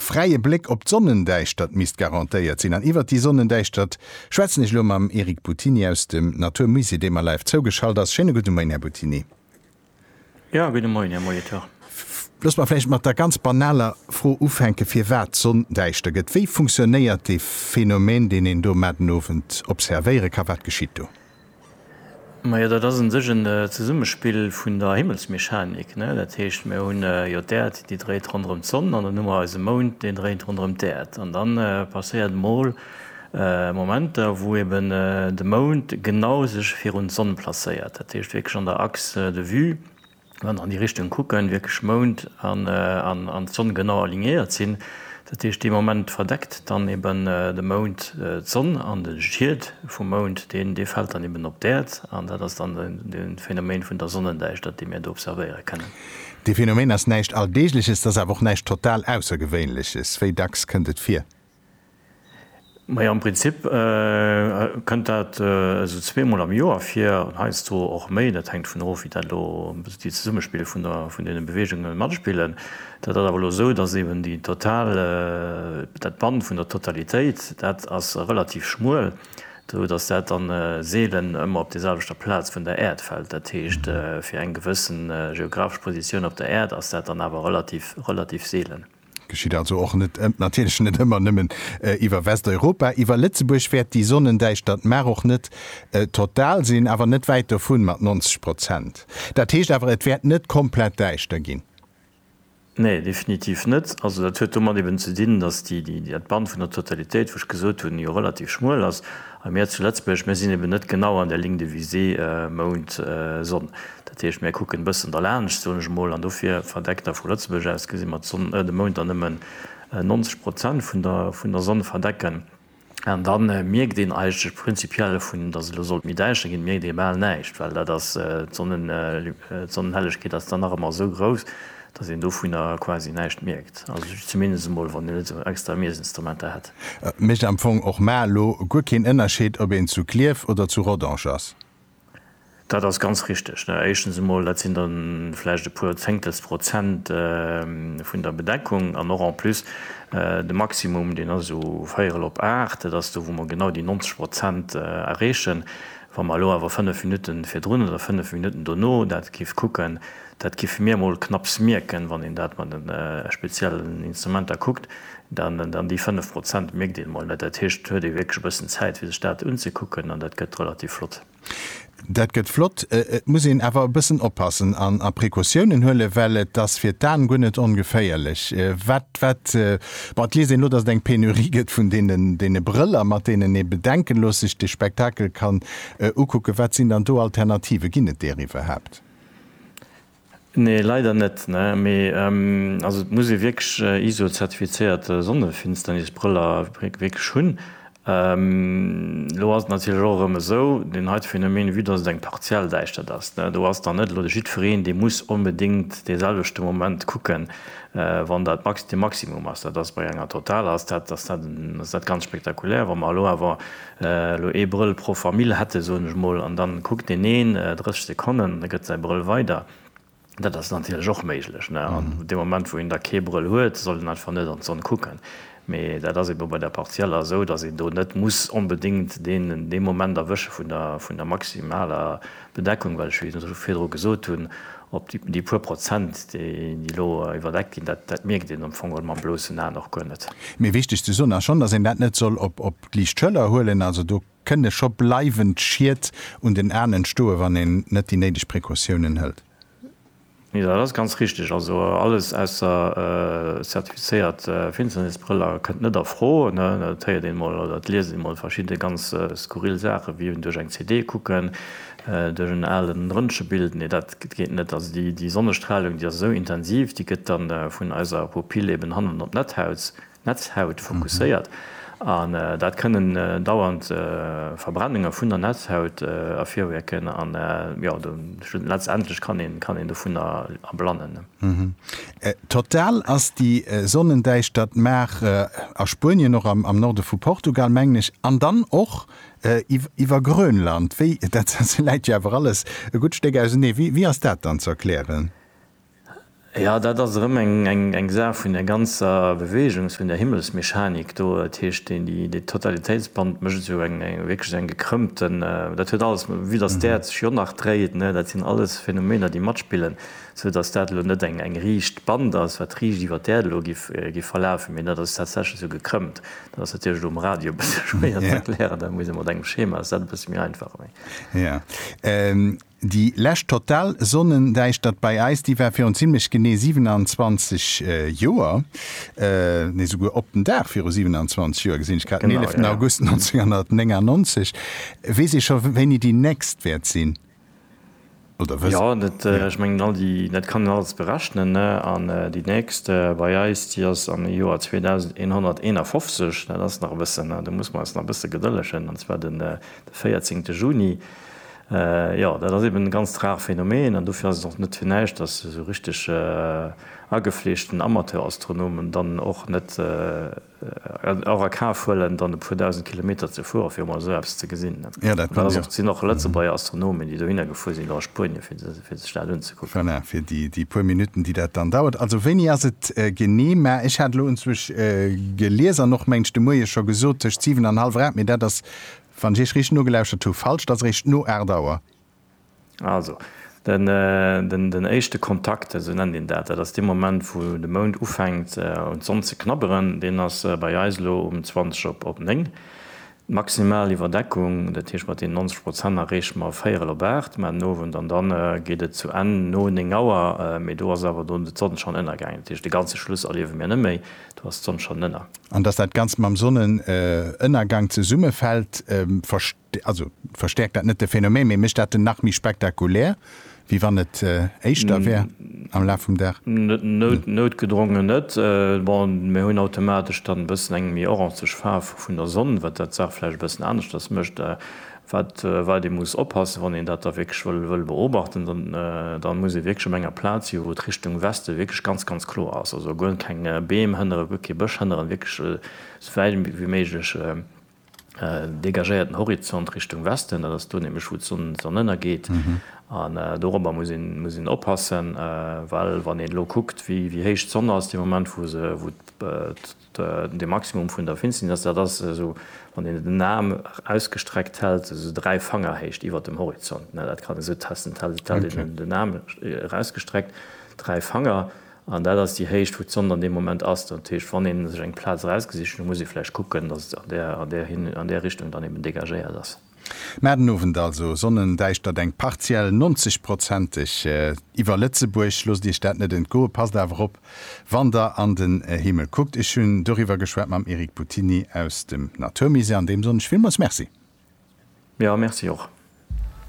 Fräie Bléck op d'Sonnendäischtert misst garantéiert sinn an iwwert déi Sonnendäischtert schwätzen ech elo mam Eric Buttini aus dem Natur Musée, dee mer live zougeschalt ass. Schéine gudde Moien, Här Buttini. Jo, gudde Moien, Här Molitor. Loosst mer vläicht mat der ganz banaler Fro ufänken, firwat d'Sonn däischter gëtt. Wéi funktionéiert dee Phänomen, deen een do matenowend observéiere ka? Wat geschitt do? Majo, dat ass un sech en Zesummespill vun der Himmelsmechanik, ne? Dat heescht, mir hunn jo d'Äerd, déi dréit ronderëm d'Sonn, an dann hu mer eise Mound, deen dréit ronderëm d'Äerd. An dann passéiert mol Momenter, wou eben de Mound genau sech virun d'Sonn placéiert, dat heescht wierklech an der Axe de vue. wann an déi Richtung kucken, wierklech Mound an Sonn genau alignéiert sinn, dat heescht dee Moment verdeckt dann eben de Mound d'Sonn an de Schiet vum Mound deen dee fält dann eben op d'Äerd an dat ass dann de Phänomen vun der Sonnendäischtert déi mir do observéiere kennen. Dee Phänomen ass näischt Alldeegleches, et ass awer och näischt total Aussergewéinleches. Wéi dacks kënnt et vir? Majo, am Prinzip kënnt dat esou zweemol am Joer vir, an heiansdo och méi. Dat hänkt dovun of, wéi dat elo déi Zesummespill vun der vun deene Beweegunge matspillen. Dat ass awer elo esou, datt eben déi total dat Bann vun der Totalitéit, dat ass relativ schmuel, esou datt dat dann seelen ëmmer op deeselwechter Plaz vun der Äerd fält. Dat heescht, fir eng gewëssen geographesch Positioun op der Äerd ass dat dann awer relativ relativ seelen. Geschitt also och net, natierlech net ëmmer nëmmen iwwer Westeuropa. Iwwer Lëtzebuerg wäert déi Sonnendäischtert mar och net total sinn, awer net wäit dovun, mat 90 Prozent. Dat heescht awer, et wäert net komplett däischter ginn. Nee, definitiv net. Also dat huet domat eben ze dinn, datt dat Band vun der Totalitéit, wou ech gesot hunn, jo relativ schmuel ass. A mir zu Lëtzebuerg, mir sinn eben net genau an der Ligne de visée Mound-Sonn. Dat heescht, mir kucken e bëssen derlaanscht, soen ech emol, an dofir verdeckt da vu Lëtzebuerg aus gesi mer d'Sonn, de Mound da nëmmen 90 Prozent vun der Sonn verdecken. An da mierkt een eigentlech prinzipiell, dovun, dass et elo sollt méi däischter ginn, mierkt ee bal näischt, well dat ass, d'Sonnenhellegkeet ass dann nach ëmmer esou grouss, dass een dovunner quasi näischt mierkt. Also ech zumindest emol, wann een net esou extra Miesinstrumenter hätt. Et mécht am Fong och mar elo guer keen Ënnerscheed, ob een zu Klierf oder zu Rodange ass. Dat ass ganz richteg. Éischtens emol, dat sinn da vläicht e puer Zéngtels Prozent vun der Bedeckung. An och en plus, de Maximum, deen ass esou véierel op aacht. Dat ass do, wou mer genau déi 90 Prozent erreechen. Wa mer elo awer fënnef Minutten virdrun oder fënnef Minutten dono dat géif kucken, Dat giffe mir emol knapps mierken, wann een dat mat den speziellen Instrumenter kuckt, dann déi 5 Prozent mierkt een emol net. Dat heescht, et huet ee wierklech e bëssen Zäit fir sech dat unzekucken an dat gëtt relativ flott. Dat gëtt flott, et muss een awer e bëssen oppassen an a Precautiounen huelen, well et ass fir d'Aen guer net ongeféierlech wat wat, bon et liest een elo, datt et eng Penurie gëtt vun deene Brëller, mat deenen ee bedenkelos sech de Spektakel kann ukucken. Wat sinn dann do Alternativen? Ginn et deer iwwerhaapt? Nee leider net ne mee also et muss ee wierklech iso zertifizéiert Sonnefinsternisbrëller wierklech hunn. Elo ass et natierlech och erëm esou deen heite Phänomen vue dass et eng partiell Däischtert ass ne, do ass dann net elo de jiddwereen dee muss onbedéngt dee selwechte Moment kucken wann dat de Maximum ass. Dat ass bei enger totaler ass dat ass dat ganz spektakulär. Wa mer elo awer Elo ee Brëll pro Famill hätte soen ech mol, an dann kuckt deen een 30 Sekonnen, da gëtt säi Brëll weider. Dat ass natierlech och méiglech, ne, an dee Moment wou een da kee Brëll huet, soll en einfach net an d'Sonn kucken. Mee dat ass ebe bei der Partielle esou, datt een do net muss onbedéngt deen dee Moment erwësche vun der vun der maximaler Bedeckung, well ech wéi ech virdru gesot hunn, op déi déi puer Prozent déi déi elo iwwerdeckt ginn, dat dat mierkt een am Fong geholl mam bloussen Aen och guer net. Mee wichteg ze soen ass schonn, datt een dat net soll op op liicht Schëller huelen. Also do kënne scho bleiwend Schied un den Aen entstoe wann een net déi néideg Precautiounen hëlt. Jo dat ass ganz richteg. Also alles ausser zertifizéiert Finsternisbrëller kënnt net a Fro. Dat héiert een emol oder et liest een emol verschidde ganz skurril Saachen, wéi duerch eng CD kucken, duerch en alen Röntgebild. Nee dat geet net. Also déi Sonnestralung déi ass esou intensiv, déi gëtt dann vun eiser Pupille eben hannen op d'Netthaut Netzhaut fokusséiert an dat kënnen dauernd Verbrennunge vun der Netzhaut ervirruecken an jo letztendlech kann een kann een dovunner erblannen. Total ass déi Sonnendäischtert mar a Spuenien och am Norde vu Portugal mengen ech an dann och iwwer Grönland wéi dat läit jo awer alles e gutt Stéck ausenee wéi ass dat dann ze erklären? Jo, dat ass erëm eng Saach vun där ganzer Beweegung, vun där Himmelsmechanik do. Dat heescht, dee Totalitéitsband mécht esou wierklech eng gekrëmmte, dat huet alles, vue datt d'Äerd sech jo nach dréit, dat sinn alles Phänomener, déi matspillen, sou datt dat elo net eng riicht Band ass, wat riicht iwwer d'Äerd elo géif verlafen, mee dat ass tatsächlech esou gekrëmmt. Dat ass natierlech elo um Radio e bësse schwéier ze erklären, da muss ee mat engem Schema, ass dat e bësse méi einfach. Déi lescht total Sonnendäischtert bei eis, déi war virun zimmlech genee 27 Joer, nee souguer op den Dag viru 27 Joer, gesinn ech grad, den 11 August 1999. Weess ee scho wéini déi nächst wäert sinn? Jo, dat, ech mengen all déi, dat kann een alles berechnen, ne, an déi nächst bei eis, déi ass am Joer 2151, dat ass nach e bëssen, do muss mer eis nach e bësse gedëllegen, an zwar de 14 Juni. Jo, dat ass eben e ganzt rare Phänomen an dofir ass et och net fir näischt, datt esou richteg agefleeschten Amateurastronomen dann och net och a Kaf huelen, dann e puer dausend Kilometer ze fueren, fir emol esou eppes ze gesinn. Et sinn och Lëtzebuerger Astronomen, déi dohinner gefuer sinn, och a Spuenien, fir sech dat unzekucken. Voilà, fir déi puer Minutten, déi dat dann dauert. Also wéini ass et genee? Mä ech hat elo unzwuesch gelies an och, mengen ech, de Moie scho gesot, tëscht siwen an hallwer aacht. Mee dat ass Wann ech Iech riicht nogelauschert hu, falsch, et ass eréischt no 8 Auer. Also, den éischte Kontakt, esou nennt een dat, dat ass dee Moment, wou de Mound ufänkt un d'Sonn ze knabberen, deen ass bei eis elo um 20 op 9. D'maximal Iwwerdeckung, dat heescht mat deenen 90 Prozent, erreeche mer véierel op 8, mä den Owend an dann geet et zu Enn no 9 Auer, mee do ass awer dunn d'Sonn schonn ënnergaangen, dat heescht de ganze Schluss erliewe mir net méi. Do ass d'Sonn schonn ënner. An dass dat Ganzt mam Sonnenënnergank zesummefält, also verstäerkt dat net de Phänomen, mee mécht dat en nach méi spektakulär, wéi wann et éischter wär am Laf vum Dag? Noutgedrongen net. Bon, mir hunn automatesch dann e bëssen eng méi orangeg Faarf vun der Sonn, wat dat d'Saach vläicht e bëssen aneschters mécht. Wat wat ee muss oppassen, wann een dat da wierklech wëll wëll beobachten, dann dann muss ee wierklech op enger Plaz si wou d'Richtung Weste wierklech ganz ganz kloer ass, also guer keng Beem hënneren, guer kee Bësch hënneren, wierklech esou wäit wéi méiglech dégagéierten Horizont Richtung Westen, dat ass do nämlech wou d'Sonn d'Sonn ënnergeet. An dorobber muss een muss een oppassen, well wann een elo kuckt wéi wéi héich d'Sonn ass dee Moment wou se wou De Maximum vun der Finsterness, dat ass esou, wann een den Aarm ausgestreckt hält, esou dräi Fangerhéicht iwwer dem Horizont. Dat kann een esou testen, et hält een den Aarm erausgestreckt, dräi Fanger, an dat ass déi Héicht, wou d'Sond an deem Moment ass. Dat heescht, wann ee sech eng Plaz erausgesicht, da muss ee vläicht kucken, datt et an där Richtung dann eben dégagéiert ass. Mä den Owend also, Sonnendäischtert eng partiell, 90 prozenteg, iwwer Lëtzebuerg. Loosst Iech dat net entgoen, passt awer op wann Der an den Himmel kuckt. Ech hunn doriwwer geschwat mam Eric Buttini aus dem Naturmusée, an deem soen ech villmools Merci. Jo, Merci och.